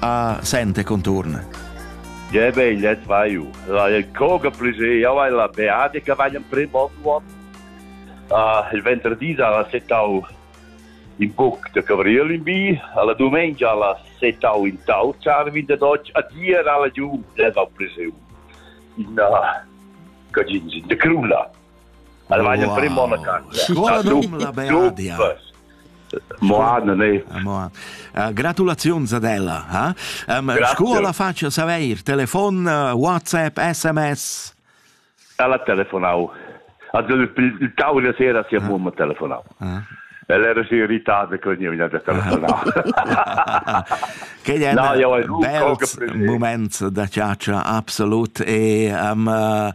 a sente contorn. Je veglia svaiu. Il coga plus io hai la beate che vai in primo uomo. Uh, il venerdì alla setau in buc de Gabriel in bi, alla domenica alla setau in tau, Charvin de Dodge, a dir alla giù deva priseu in uh, Cagins, de Crula. Alla vai in primo a casa. Qua dum la beadia. Moa non è. Moa. Uh, gratulazions ad ella, ha? Um, scuola la faccia saver, telefon, WhatsApp, SMS. Ella telefonau. Also il tavolo di sera si è mumma telefonau. Ella era si irritata con io mi ha telefonato. Quei è no, un bel moment da chatscha absolut e um, uh,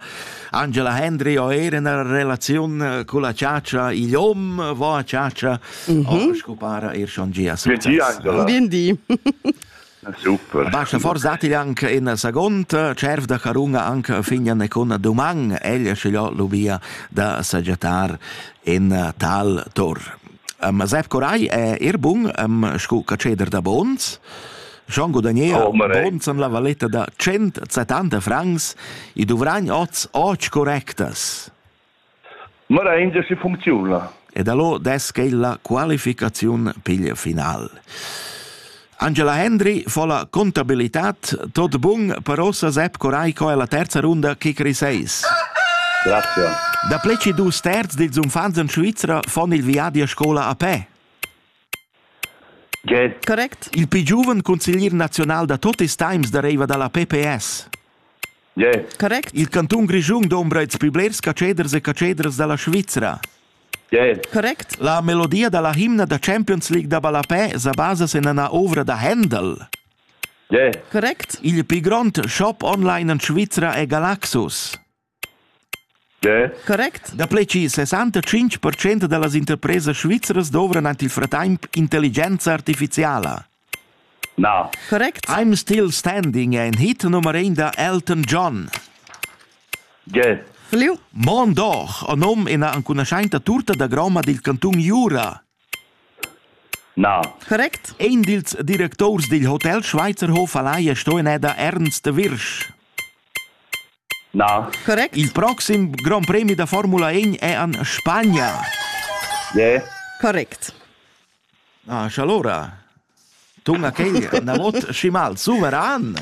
Angela Hendry ho er una relazione con la chatscha, igl hom va a chatscha, mm -hmm. o scupara er schon gia success. Bien di. Super. Basta forzati anche in seconda cerf da carunga anche fignan e con duman, ella scegliò lubia da saggiatar in tal tor. Ma Sepp Coray è er bun sco catscheder da bons. Jean Godanier oh, bons en la valetta da 170 francs e dovran oz oč correctas. Ma la India si funcziona. E da lo des che la qualificaziun piglia final. Angela Hendry fa la contabilitad tot bun, però sa sep corai co è la terza runda che creseis. Grazie. Da ple che dus terz dils unfants in Svizzera fan il viadi a scola a pe. Ge. Correct. Il più giovane consiglier nazional da tutti i times deriva dalla PPS. Ge. Correct. Il canton Grischun dombra ils piblerts caceders e caceders dalla Svizzera. Correct. La melodia dalla himna da Champions League da ballapè sa basa sin ina ovra da Händel. Correct. Il pli grond shop online en Svizra è Galaxus. Correct. Da pleci 65% da las interpresas svizras dovran ant il fratemp intelligenza artificiala. Na. Correct. I'm still standing è in hit nummer ein da Elton John. Ge. Fliu. Mon doch, o nom ina ancunaschainta turta da groma dil cantun Jura. Na. Correct. Ein dils directors dil Hotel Schweizerhof Alaia sto in da Ernst Wirsch. Na. Correct. Il proxim Grand Premi da Formula 1 è an Spagna. Ge. Correct. Ah, scha allura tuna quei anavot schi mal suveran.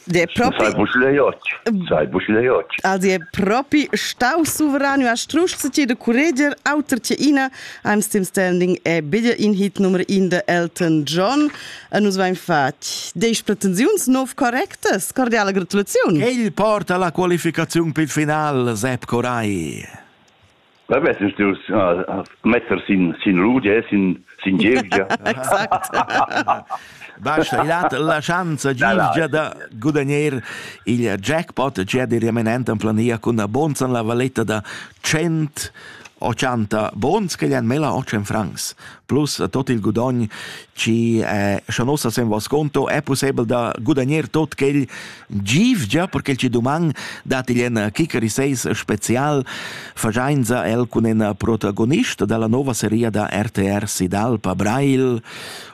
De propi Sai buschleiot, sai buschleiot. Also è propi stau suverano a strusch se ti de curreger auter che ina I'm still standing è bitte in hit nummer in de Elton John e nus vain fatg deish pretensiuns nov correctas cordiale gratulaziun. Quel porta la qualificazione per final Sepp Coray. Havesses dus uh, metter sin sin rudia sin sin gievgia. exact. Basta, il hat la chance Gilgia da gudagnare il jackpot già di remanent en plania con una bonza la valetta da 100 80 bons che gli han mela 8 francs. plus tot il gudogn chi eh, scha nos as en sconto è possibel da gudagner tot quel giv già perché ci duman dat il en Kikeri 6 special fajainza el cun en protagonist dalla nova seria da RTR Sidalpa Brail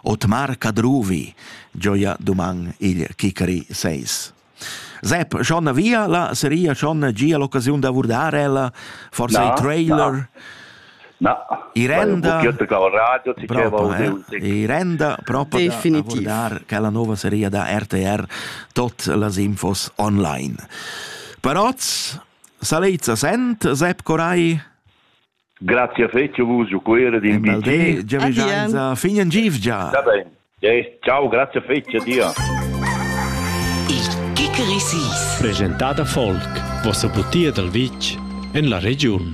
Otmar Kadruvi gioia duman il Kikeri 6 Sepp, schon via la seria schon gia l'occasiun da vurdar ella, forse il trailer. Na. Na, Irenda, radio, Irenda proprio definitiv. da che la nuova serie da RTR tot las infos online. Però Salezza sent, Sepp Corai? Grazie fetg vus giu quera din BT. Giavischanza fin in givgia. Da ben. Ciao, grazie fetg, dir. Il Kickerisis. Presentà da Volk, vossa butia dal vitg en la regiun.